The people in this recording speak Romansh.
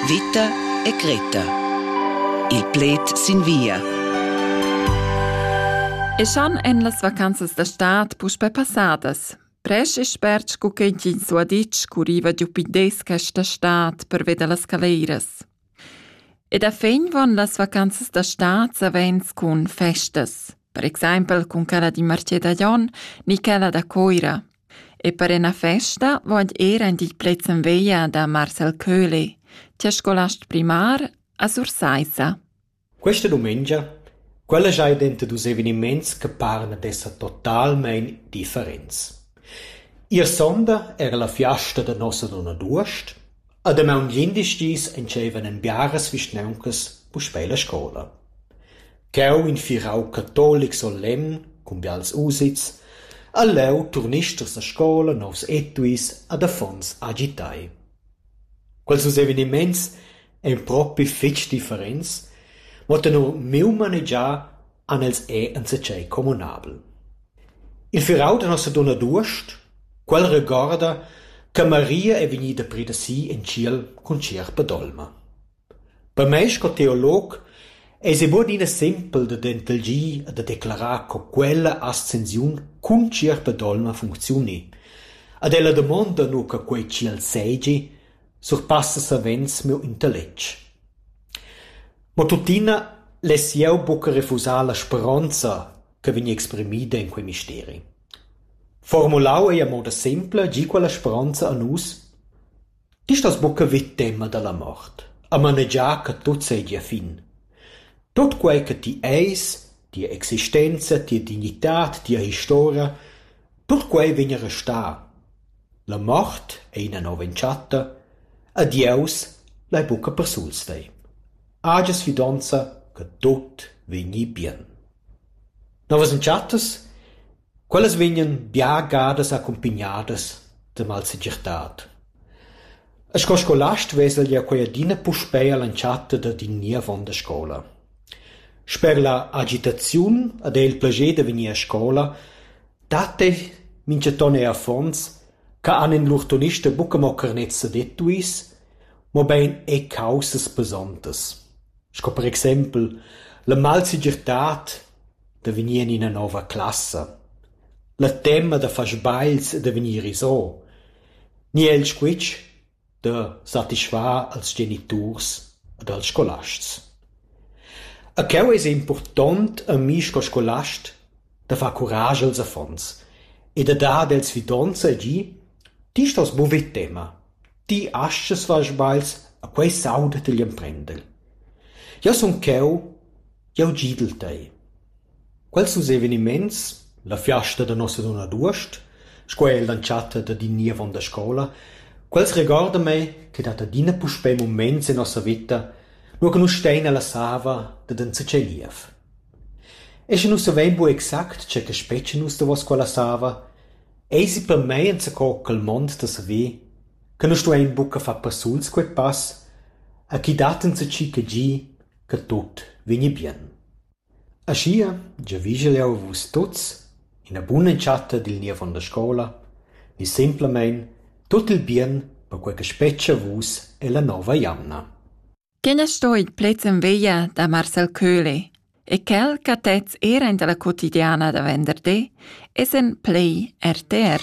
Vita e cretta. Il pled sin via. E schon en las vacanzas da stad puspè passadas. Presch e spert sco che ins ha ditg, curriva giu pindes questa stad per vedere las caleras. E da fin van las vacanzas da stad savens cun festas, per exempel cun quella di Marché da Jon ni quella da Coira. E per ina festa vogl ir aint il plezzen veglia da Marcel Köhli, tia scolast primar a Sursaissa. Questa dumengia quella giai denter dus eveniments che paran ad esser totalmein differents. Ier sonda era la fiasta da nossa donna d'uost, A damaun glindis dis entscheivan en biaras vischnauncas puspei la scola. Cheu in firau catolic solemn cun bials usits ha leu turnisters da scola, novs etuis ad affons agitai. Quels dus eveniments ein propi fetg differents, mo tenor miu manegiar han els è enzatgei communabel. Il firau da Nossadunna d'uost, quel regorda che Maria ei vegnida pir da si en tschiel cun sierpa d'olma. Per mei sco teolog eisi buc adina sempel da dentelgir e da declarar co quella ascensiun cun sierpa d'olma funcziuni. Ed ella damonda nu che quei tschiel seigi, surpassa savens miu intelletg. Mo tuttina less jeu buca refusar la speronza che vegn exprimida en quei misteri. Formulau ei a moda sempla gie quella speronza a nus: Ti stas buca vid tema dalla mort, a manegiar che tut seigi a fin. Tut quei che ti eis, tia existenza, tia dignitad, tia historia, tut quei vegn a restar. La mort ei ina nova entschatta e Dieus lai buca persuls vei. Hagias fidonza che tut vegni bien. Novas entschattas? Quellas vegnan bia gadas accumpignadas da malsegirtad. Sco scolast vesel jeu quei adina puspei all'entschatta dad in niev onn da scola. Sper la agitaziun ed era il plascher da vegnir a scola dat ei mintgaton er affons che han in lur tonista buca mo carnets sedettuis, mobein er caussas pesontas. Sco per exempel la malsegirtad da vegnir en ina nova classa, la tema da far sbagls e da vegnir isò, ni el squitsch da satisfar als geniturs ed als scolasts. E cheu eis impurtont a mi sco scolast da far curage als affons e da dar ad els fidonza e gi: Ti stos buca vid tema. Ti astgas far sbagls e quei sauda digl emprender. Jeu sun cheu, jeu gidel tei. Quels dus eveniments, la fiasta da Nossadunna d'uost, sco er l'entschatta dad in niev onn da scola, quels regorda mei ch'ei dat adina puspei muments en nossa veta, nua che nus stein ella sava dad enzatgei niev. E sche nus savein buca exact tge che spetga nus davos quella sava, Eisi per mei enzaco quel mond da saver che nus stuein buca far persuls quei pass e ch'i dat enzatgi che gi che tut vegni bien. Aschia giavischel jeu a vus tuts ina bun'entschatta dil ni avon la scola ni semplamein tut il bien per quei che spetga a vus ella nova jamna. Quel es stoit pleds in veglia da Marcel Köhle e quel ch'ha tets era in da la quotidiana da venderdi es in play RTR.